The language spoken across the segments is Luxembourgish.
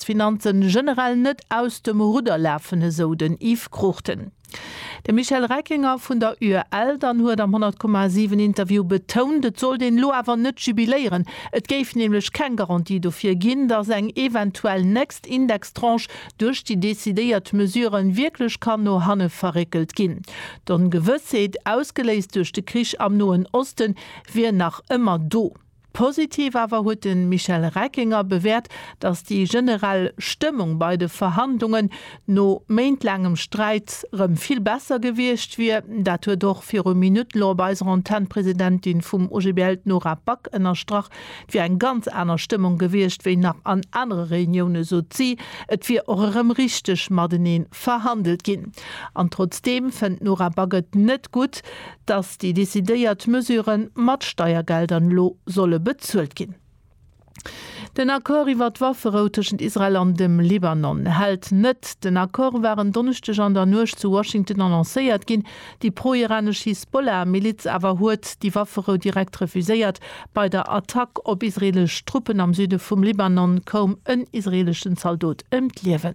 d'Finanzen generell net aus dem Rudder lafen, esou den Yves Cruchten. De Michel Reckinger vun der UEL dann huet am 100,7 Interview betount, et sollt een elo awer net jubiléieren, et géif nämlech keng Garantie dofir ginn, datt eng eventuell nächst Indextranche duerch déi decidéiert Mesure wierklech kann no hanne verréckelt ginn. D'Ongewëssheet, ausgeléist duerch de Krich am Noen Osten, wier nach ëmmer do. Positiv awer huet de Michel Reckinger bewäert, datt déi generell Stëmmung bei de Verhandlungen, no méintlaangem Sträit, rëm vill besser gewiescht wier. Dat huet och viru Minutten elo op eiser Antenn d'Presidentin vum OGBL, d'Nora Back, ënnerstrach. Et wier eng ganz aner Stëmmung gewiescht wéi nach an anere Reuniounen, sot si. Et wier och erëm richteg matenee verhandelt ginn. An trotzdeem fënnt d'Nora Back et net gutt, dass déi decidéiert Mesure mat Steiergeldern elo solle bezuelt ginn. Den Accord iwwert d'Wafferou tëschent Israel an dem Libanon hält net. Den Accord war en Donneschdeg an der Nuecht zu Washington annoncéiert ginn. Déi pro-iranesch Hisbollah-Miliz awer huet déi Wafferou direkt refuséiert. Bei der Attack op israeelesch Truppen am Süde vum Libanon koum en israeeleschen Zaldot ëm d'Liewen.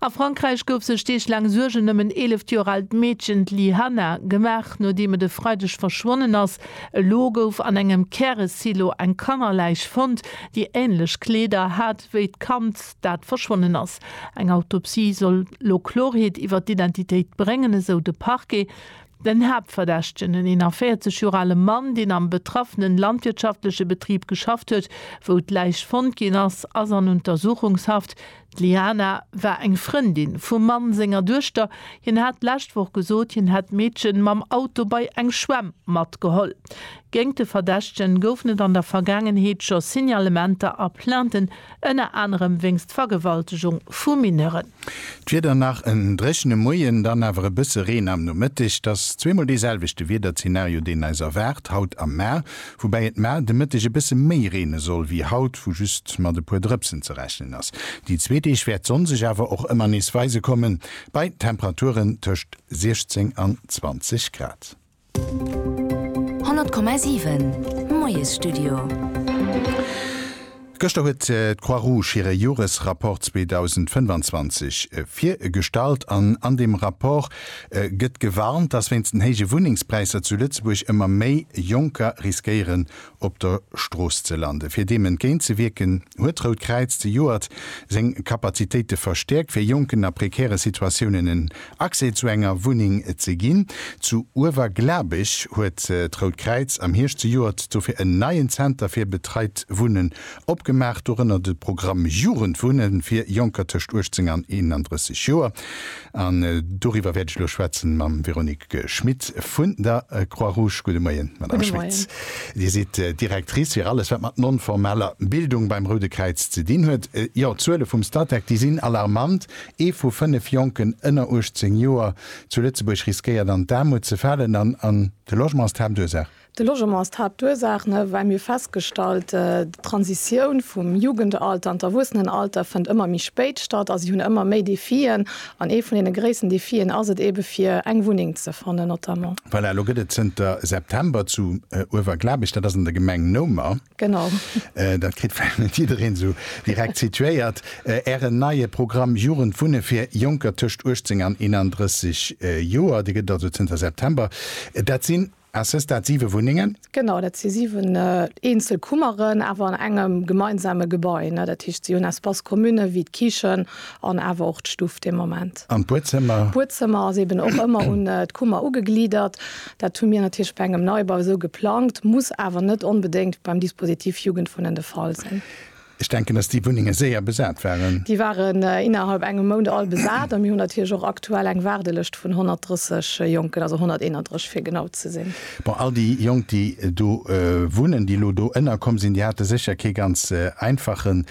A Frankräich gouf sech Deeg laang Suergen ëm en 11 Joer aalt Meedchen, d'Li Hanna, gemaach, nodeem et e Freideg verschwonnen ass. Elo gouf an engem Käresilo eng Kannerläich fonnt, déi änlech Kleeder hat wéi d'Kand, dat verschwonnen ass. Eng Autopsie soll elo Klorheet iwwer d'Identitéit bréngen, esou de Parquet. Den Haaptverdächtegen, en 41 Joer ale Mann, deen am betraffenen landwirtschaftleche Betrib geschafft huet, wou d'Läich fonnt ginn ass, ass an Untersuchungshaft. D'Liana war eng Frëndin vum Mann senger Duechter. Hien hat d'lescht Woch gesot, hien hätt d'Meedchen mam Auto bei eng Schwämm matgeholl. Géint de Verdächtegen goufen et an der Vergaangenheet scho Signalementer a Plainten, ënner anerem wéinst Vergewaltegung vu Mineuren. D'Wieder, Nach en dréchene Moien, dann awer e bësse Reen am Nomëtteg. Et ass zweemol dee selwechte Wiederzenario, deen eis erwaart, haut a mar, woubäi et mar de Mëtteg e bësse méi reene soll wéi haut, wou just mat e puer Drëpsen ze rechnen ass. Déi zwee Deeg wäert d'Sonn sech awer och ëmmer nees weise kommen, bei Temperaturen tëscht 16 an 20 Grad. 100,7 Moiesstudio Gëschter huet d'Croix Rouge hire Joresrapport 2025 virgestallt an an deem Rapport gëtt gewarnt, dass wéinst den héije Wunnengspräisser zu Lëtzebuerg ëmmer méi Jonker riskéieren op der Strooss ze landen. Fir deem entgéint ze wierken, huet d'Rout Kräiz zejoert seng Kapazitéite verstäerkt, fir Jonken a prekäre Situatiounen en Accès zu enger Wunneng ze ginn. Zu Uewerglabech huet d'Rout Kräiz am Hierscht zejoert dofir en neien Zenter fir betreit Wunnen opgemaach, dorënner de Programm Jugendwunnen fir Jonker tëscht 18 an 31 Joer. An doriwwer wäert ech elo schwätzen mam Véronique Schmit vun der Croix-Rouge. Gudde Moien, Madame Schmit. Dir sidd Directrice fir alles, wat mat non-formaler Bildung beim Roude Kräiz ze dinn huet. Jo, d'Zuele vum Statec, déi sinn alarmant. Ee vu fënnef Jonken ënner 18 Joer zu Lëtzebuerg riskéiert an d'Aarmut ze falen. An de Logement ass d'Haaptursaach. De Logement ass d'Haaptursaach, ne, well mir festgestallt, d'Transitioun vum Jugendalter an d'Erwuessenenalter fënnt ëmmer méi spéit statt a si hunn ëmmer méi Defien. An ee vun deene gréissten Defien ass et eebe fir eng Wunneng ze fannen notamment. Voilà, lo gëtt et zënter September zu Uewerglabech, dat ass an der Gemeng Noumer. Genau. Dat kritt vläicht net jiddereen esou direkt situéiert, Ären neie Programm Jugend Wunne fir Jonker tëscht 18 an 31 Joer, dee gëtt et also zënter September. Dat sinn. A ses dat siwe Wunnengen? Genau, dat si siwen eenzel Kummeren, awer an engem gemeinsame Gebai. Dat heescht, si hunn Espace communë wéi d'Kichen an awer och d'Stuff de Moment. An d'Buedzëmmer? D'Buedzëmmer ass eeben och ëmmer un d'Kummer ugeglidert. Dat hu mir natierlech bei engem Neibau esou geplangt, muss awer net onbedéngt beim Dispositif Jugendwohnen de Fall sinn. Ech denken, dass déi Wunnenge séier besat waren. Déi waren innerhalb engem Mount all besat a mir hunn natierlech och aktuell eng Waardelëscht vun 130 Jonken, also 131 fir genau ze sinn. Bon, all déi Jonk, déi do wunnen, déi elo do ënnerkomm sinn, déi hate sécher kee ganz einfache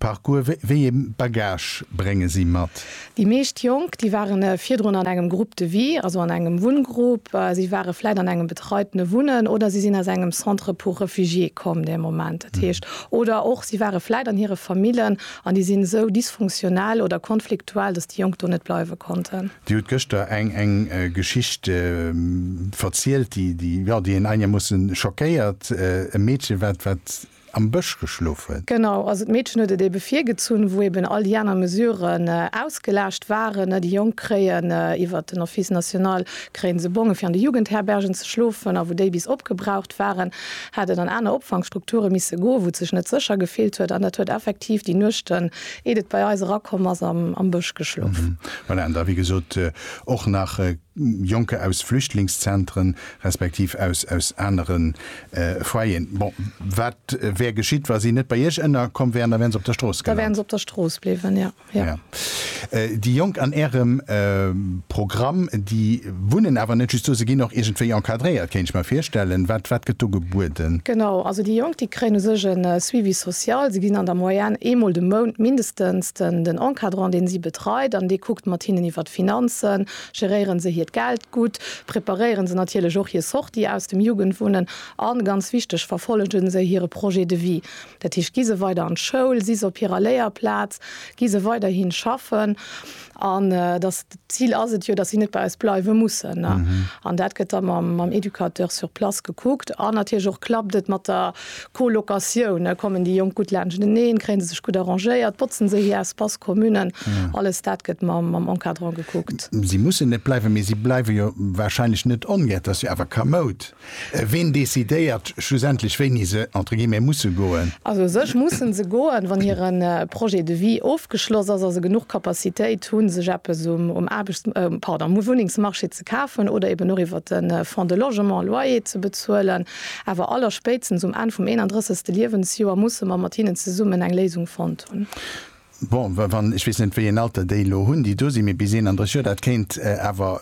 Parcours. Wéi ee Bagage brénge si mat? Déi meescht Jonk, déi ware virdrun an engem Groupe de vie, also an engem Wunngrupp. Si ware vläit an engem betreitene Wunnen oder si sinn aus engem Centre pour réfugiés komm dee Moment. Dat heescht, oder och si ware vläit an hire Famillen an déi sinn esou dysfunktionell oder konfliktuell, dass déi Jonk do net bleiwe konnten. Dir hutt gëschter eng eng Geschicht verzielt, déi, déi, jo, déi een einigermoossen schockéiert. E Meedchen, wat, wat. am Bësch geschlofen. Genau, also d'Meedchen huet et eebe virgezunn, wou eeben all déi aner Mesuren ausgelaascht waren. Déi Jonk kréien iwwer den Office national kréie se Bonge fir an de Jugendherbergen ze schlofen, a wou déi bis opgebraucht waren, hat et an aner Opfangstrukture misse goen, wou et sech net sécher gefillt huet. An dat huet effektiv déi Nuechten, iert et bei eis erakomm ass, am Bësch geschlof. Voilà, an da wéi gesot och nach Jonker aus Flüchtlingszentren, respektiv aus anere Foyeren. Bon, wat wär geschitt, wa si net bei Iech ënnerkomm wären? Da wären se op der Strooss gelant. Da wären se op der Strooss bliwwen, jo. Jo. Jo. Déi Jonk an Ärem Programm, déi wunnen awer net just do, se ginn och iergendwéi encadréiert, kéint ech mer virstellen. Wat, wat gëtt do gebueden? Genau. Also déi Jonk, déi kréien u sech e Suivi social. Se ginn an der Moyenne eemol de Mount mindestens den Encadrant, dee si betreit an dee kuckt mat hinnen iwwer d'Finanzen, Geréieren se hiert Geld gutt, preparéieren se natierlech och hir Sortie aus dem Jugendwunnen a, ganz wichteg, verfollegen se hire Projet de vie. Dat heescht, gi se weider an d'Schoul, si se op hirer Léierplaz, gi se weiderhi schaffen an dass, d'Zil ass et jo, dass si net bei eis bleiwe mussen. An dat gëtt da mam Educateur sur place gekuckt. An natierlech och, klappt et mat der Colocatioune kommen déi Jonk gutt laanschteneen, kréie se sech gutt arrangéiert, botzen se hir Espace communen, alles dat gëtt mam Encadrant gekuckt. Si mussen net bleiwen, mee si bleiwe jo warscheinlech net ongär. Et ass jo awer kamoud, ween decidéiert schlussendlech wéini se entre guillemets musse goen? Also u sech mussen se goen, wann hire Projet de vie ofgeschloss ass a se genuch Capacitéit hu sech eppes um Aarbechts, pardon, um Wunnengsmarché ze kafen oder eben och iwwer de Fonds de logement Loyer ze bezuelen. Awer allerspéitstens um Enn vum 31. Liewensjoer musse mer mat hinnen zesummen eng Léisung fonnt hunn. Bon, wann, ech weess net, wéi een Alter déi elo hunn, déi do sinn, mee bis 31 Joer, dat kéint awer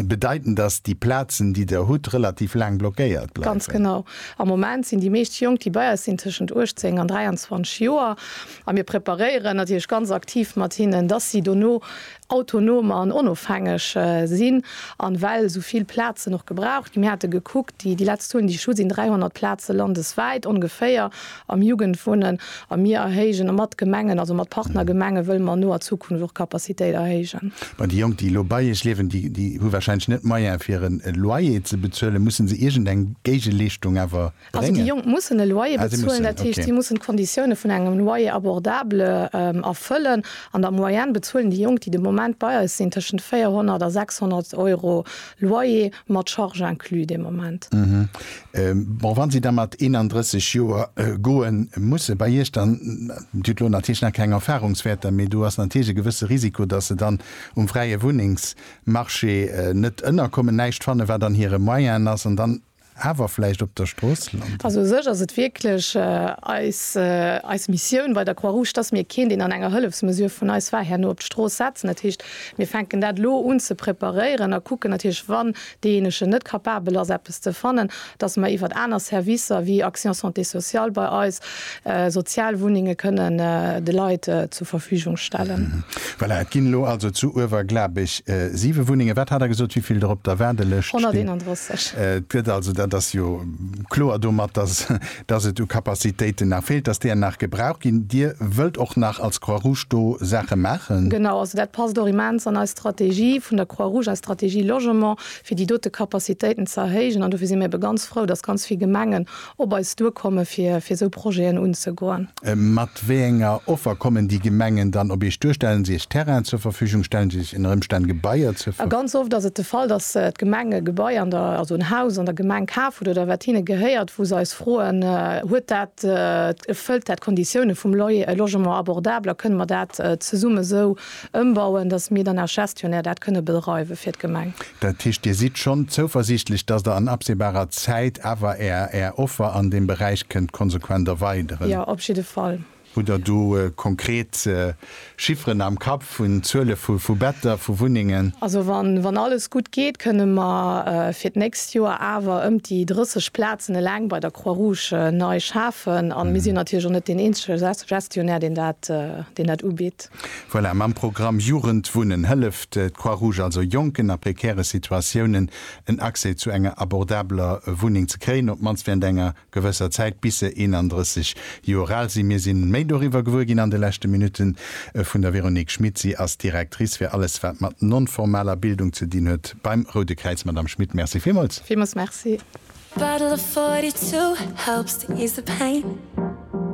bedeiten, dass déi Plazen, déi Der hutt, relativ laang blockéiert bleiwen. Ganz genau. Am Moment sinn déi meescht Jonk, déi bei eis sinn, tëschent 18 an 23 Joer a mir preparéieren natierlech ganz aktiv mat hinnen, dass si dono autonom an onofhängeg sinn an well esou vill Plazen och gebraucht ginn. Mir hate gekuckt, déi leszt Zuelen, déi ech hu, sinn 300 Plaze landeswäit ongeféier am Jugendwunnen a mir erhéijen mat Gemengen, also mat Partnergemenge wëlle mer noer Zukunft och d'Capacitéit erhéijen. Mä déi Jonk, déi elo bei Iech liewen, déi hu warscheinlech net d'Moyen fir e Loyer ze bezuelen. Musse se iergendeng Géigeleeschtung awer Also déi Jonk mussen e Loyer bezuelen, dat heescht si mussen d'Konditioune vun engem Loyer abordable erfëllen. An der Moyenne bezuelen déi Jonk, déi de Moment bei eis sinn, tëschent 400 a 600 Euro Loyer, mat Charge inclus de Moment. Bon, wa si da mat 31 Joer goen, muss se bei Iech dann, Dir hutt elo natierlech nach keng Erfarungswäerter, mee do ass natierlech e gewësse Risiko, datt se dann um fräie Wunnengsmarché net ënnerkommen, näischt fannen, wat an hire Moyennen ass an dann, Awer vläicht op der Strooss landen. Also u sech ass et wierklech eis, eis Missioun bei der Croix-Rouge, dass mir keen, deen an enger Hëllefsmesure vun eis war, herno op d'Strooss setzen. Dat heescht, mir fänken dat elo un ze preparéieren a kucken natierlech, wann deejéinegen net capabel ass, eppes ze fannen, dass mer iwwert aner Servicer wéi Action Santé Sociale bei eis sozial Wunnenge kënnen de Leit zur Verfügung stellen. Voilà, et ginn elo also zu Uewerglabech siwe Wunnengen. Wat hat Der gesot, wéi vill der op der Waardelëscht stinn? 131. Et gëtt also, dat ass jo kloer domat, dass, dass et u Capacitéiten nach feelt, dass deer nach gebraucht ginn. Dir wëllt och nach als Croix-Rouge do Saache maachen? Genau, also dat passt och immens an eis Strategie vun der Croix-Rouge, eis Strategie Logement, fir déi dote Capacitéiten ze erhéijen. An dofir si mir ebe ganz frou, dass ganz vill Gemengen op eis duerkomme fir fir esou Projeten unzegoen. Mat wéi enger Offer kommen déi Gemengen dann op iech duer? Stellen si iech Terrainen zur Verfügung? Stellen si iech ënner Ëmstänn Gebaier zur. A ganz oft ass et de Fall, datt d'Gemeng e Gebai an der, also en Haus an der Gemeng kaf huet oder wat hinne gehéiert, wou se eis froen, huet dat, erfëllt dat d'Konditioune vum Loyer, logement abordable a kënne mer dat zesumme esou Ëmbauen, dass mir dann als Gestionnaire dat kënne bedreiwe fir d'Gemeng. Dat heescht, Dir sidd schonn zouversiichtlech, dass Der an absehbarer Zäit awer Är, Är Offer an deem Beräich kënnt konsequent erweideren? Jo, op jidde Fall. Hutt Der do konkret Chifferen am Kapp vun Zuele vu Better, vu Wunnengen? Also wann alles gutt geet, kënne mer fir d'nächst Joer awer ëm déi 30 Plazen eleng bei der Croix-Rouge nei schafen. A mir sinn natierlech och net deen eenzege Gestionnaire, deen dat ubitt. Voilà, mam Programm Jugend wunnen hëlleft d'Croix Rouge also Jonken a prekäre Situatiounen en Accès zu enger abordabeler Wunneng ze kréien, op d'mannst während enger gewësser Zäit, bis se 31 Joer al sinn. Mir si méi doriwwer gewuer ginn an de leschte Minutten vun der Véronique Schmit. Si ass Directrice fir alles, wat mat non-formaler Bildung ze dinn huet beim Roude Kräiz. Madame Schmit, Merci villmools. Villmools Merci.